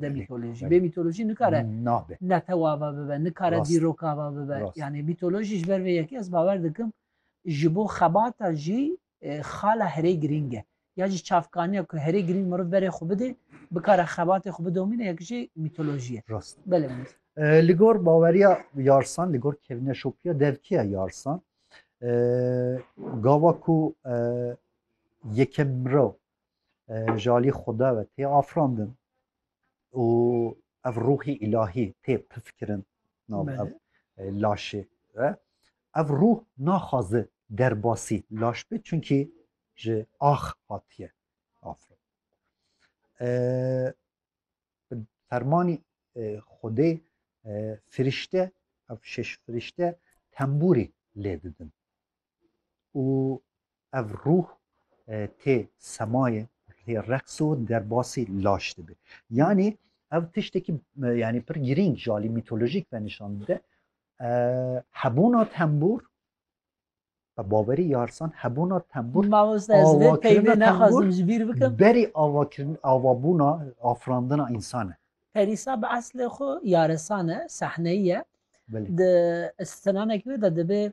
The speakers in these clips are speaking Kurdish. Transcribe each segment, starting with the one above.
de mîtolojî. Bê mîtolojî nikare netewava bibe, nikare dîrokava bibe. Yanî mîtolojî ji ber vê yekê ez bawer dikim ji bo xebata jî e, xala herê girîng e. Ya jî çavkaniya ku herê girîng meriv berê xwe bidê, bikare xebatê xwe bidomîne yek jî mîtolojî ye. Rast. Belê e, Li gor baweriya yarsan, li gor kevne şopiya devkiya yarsan e, gava ku yekem mirov ji alî Xweda ve tê afirandin û ev ruhî îlahî tê pifkirin nav ev laşê ve ev ruh naxwaze derbasî laş be çunkî ji ax hatiye afirin fermanî Xwedê firîşte ev şeş firîşte tembûrî lê didin û ev ruh tê semayê tê reqs û derbasî laş dibe. Yanî ev tiştekî yanî pir girîng ji alî mîtolojîk ve nîşan dide. Hebûna tembûr Bi bawerî yarsan hebûna tembûr berî avakirin avabûna afirandina însan e. Perîsa bi eslê xwe yaresan e, sehneyî ye. Di sinanekî wê de dibê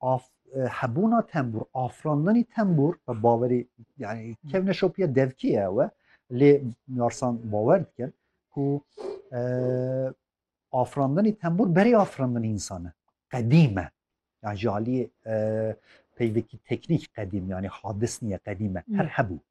af hebûna tembûr afirandinî tembûr bi bawerî yani kevne şopiya devkî ye ew e lê yarsan bawer dikin ku afirandinî tembûr berê afirandinî însan e qedîm e yan ji aliyê peyvekî teknîk qedîm yanî hadis niye qedîm e her hebû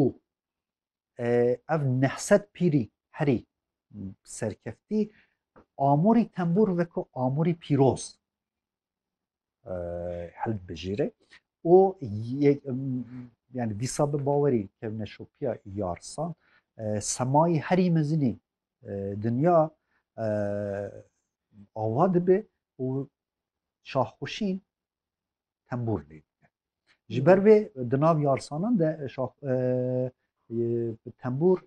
û ev neh sed pîrî herî serkeftî amûrî tembûr veko amûrî pîroz held bijîre û yani dîsa bi bawerî kevne şopiya yarsan semayî herî mezinî dinya awa dibe û şahxuşîn tembûr lê dike ji ber vê di nav yarsanan de tembûr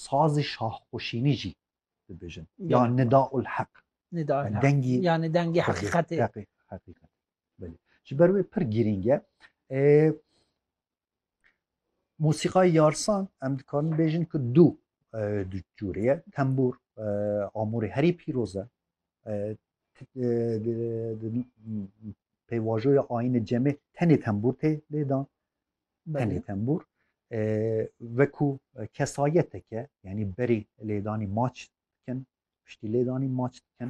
sazê şahxweşînî jî dibêjin ya nida ul heq dengî yani dengî heqîqetê heqîqet ji ber wê pir girîng e Musîqayê yarsan em dikarin bêjin ku du du cûrê ye tembûr amûrê herî pîroz e pêvajoya ayînê cemê tenê tembûr tê lêdan tenê tembûr wekû kesayeteke yanî berî lêdanî maç dikin piştî lêdanî maç dikin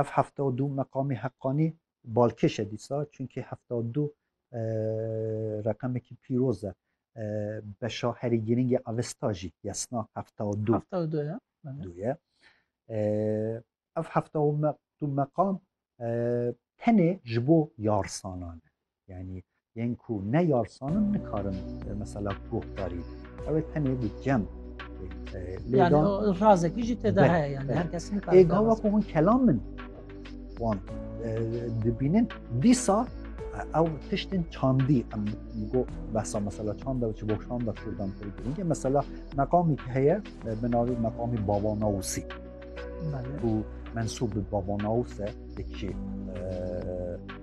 Ev hefta û du meqamê heqanî balkêş e dîsa çunkî hefta û du reqemekî pîroz e. Beşa herî girîngê Avesta jî yesna hefta û du. Hefta û du ye. Du ye. Ev hefta û du meqam tenê ji bo yarsanan e. Yani yên ku ne yarsanin nikarin e, mesela guhdarî ew ê tenê bi cem e, yani razekî jî têda heye yani her kes nikare ê gava ku hûn kelam min wan e, dibînin dîsa ew tiştên çandî em go behsa mesela çanda çi bo çanda kurdan pir girîngê mesela meqamî heye bi navî meqamî baba nawsî û mensûb bi baba nawse dikî